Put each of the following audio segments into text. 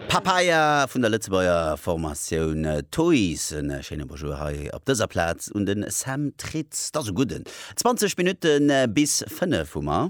Papaya vun der Lëtzebuerger Formatioun Toys. E schéine Bonjour hei op dëser Plaz un de Sam Tritz. T'ass e gudden. 20 Minutte bis 5 hu mer.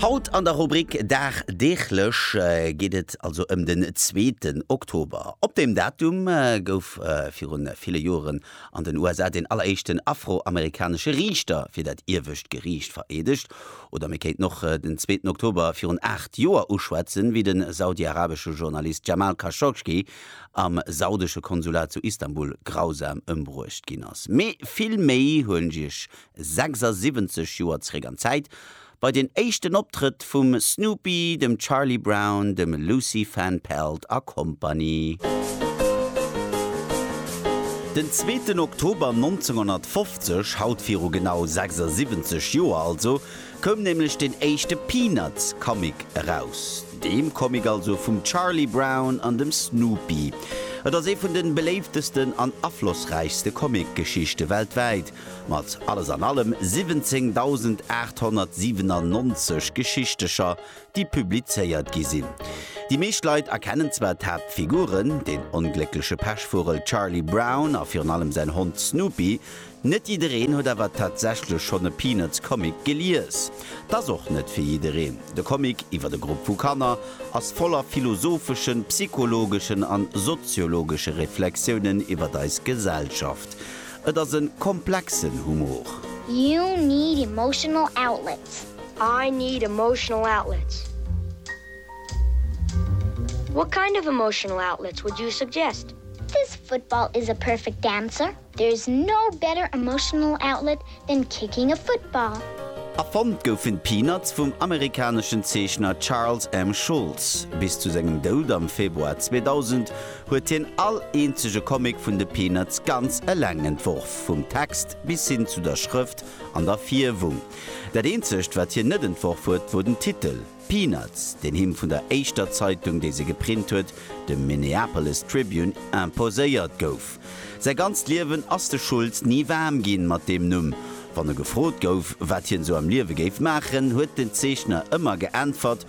Haut an der Rubrik Dagdeeglech geet et also ëm den zweeten Oktober. Op deem Datum gouf virun ville Joren an den USA deen alleréischten afro-amerikanesche Riichter fir dat iewescht Geriicht vereedegt. Oder mir kéinten och den zweeten Oktober virun aacht Joer uschwätzen, wéi den saudiarabesche Journalist Jamal Khashoggi am saudesche Konsulat zu Istanbul grausam ëmbruecht ginn ass. Mee vill méi huelen ech iech 76 Joer zeréck an d'Zäit, bei den éischten Optrëtt vum Snoopy, dem Charlie Brown, dem Lucy Van Pelt a Kompanie. Den zweeten Oktober 1950, haut viru genau 76 Joer also, koum nämlech den éischte Peanuts Comic eraus. Deem Comic also vum Charlie Brown an dem Snoopy. Et ass ee vun de beléiftesten an aflossräichste Comic-Geschichte weltwäit Mat alles an allem 17.897 Geschichtecher, déi publizéiert gi sinn. Déi meescht Leit erkennen zwar d'Haaptfiguren, den ongléckleche Pechvugel Charlie Brown a virun allem säin Hond Snoopy, net jiddereen huet awer tatsächlech schonn e Peanuts-Comic gelies. 't ass och net fir jiddereen. De Comic iwwer e Grupp vu Kanner ass voller philosopheschen, psychologeschen an soziologesche Reflexiounen iwwer eis Gesellschaft. Et ass en komplexen Humor. You need emotional outlets. I need emotional outlets. What kind of emotional outlets would you suggest? This football is a perfect dancer. There is no better emotional outlet than kicking a football. Erfonnt goufen d'Peanuts vum amerikaneschen Zeechner Charles M. Schulz. Bis zu sengem Doud am Februar 2000 huet hien all eenzege Comic vun de Peanuts ganz eleng entworf, vum Text bis hin zu der Schrëft an der Fierwung. Dat eenzegt, wat hien net entworf huet, wor den Titel, Peanuts, deen him vun der éischter Zeitung, déi se geprint huet, dem Minneapolis Tribune, imposéiert gouf. Säi ganzt Liewen ass de Schulz ni waarm ginn mat deem Numm. Wann e gefrot gouf, wat hien sou am Liewe géif maachen, huet den Zeechner ëmmer geäntwert,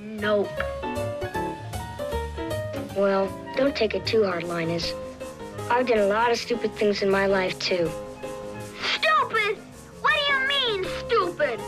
Nope. Well, don't take it too hard, Linus. I've done a lot of stupid things in my life too. Stupid? What do you mean, stupid?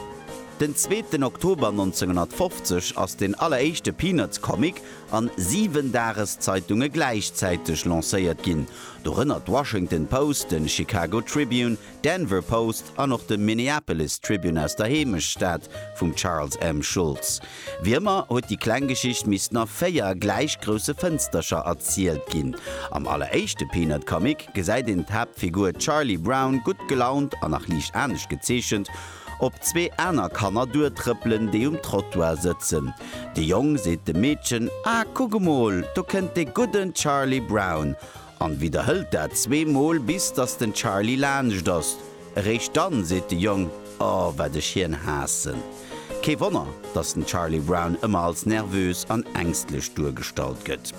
Den zweeten Oktober 1950 ass den alleréischte Peanuts-Comic an siwen Dageszeitunge gläichzäiteg lancéiert ginn, dorënner d'Washington Post, den Chicago Tribune, D'Denver Post an och de Minneapolis Tribune aus der Heemechtsstad vum Charles M. Schulz. Wéi ëmmer huet déi kleng Geschicht missten a véier gläich grousse Fënstercher erzielt ginn. Am alleréischte Peanut Comic gesäit een d'Haaptfigur Charlie Brown gutt gelaunt a nach liicht anescht gezeechent op zwee aner Kanner duertrëppelen, déi um Trottoir sëtzen. De Jong seet dem Meedchen, Ah, kuck emol, do kënnt dee gudden Charlie Brown! an widderhëlt dat zwee Mol bis dass den Charlie laanscht ass. Eréischt dann seet de Jong, Oh wat ech hien haassen. Kee Wonner dass den Charlie Brown ëmmer als nervös an ängstlech duergestallt gëtt.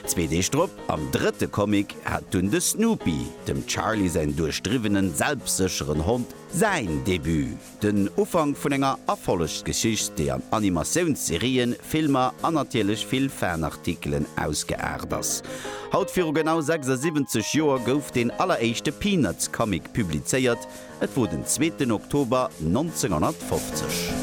Zwee Deeg drop, am drëtte Comic, hat dunn de Snoopy, dem Charlie säin duerchdriwwenen selbstsécheren Hond, säin Debut. Den Ufank vun enger Erfollegsgeschicht, déi an Animatiounsserien, Filmer an natierlech vill Fanartikelen ausgeaart ass. Haut viru genau 76 Joer gouf deen alleréischte Peanuts-Comic publizéiert, et wor den zweeten Oktober 1950.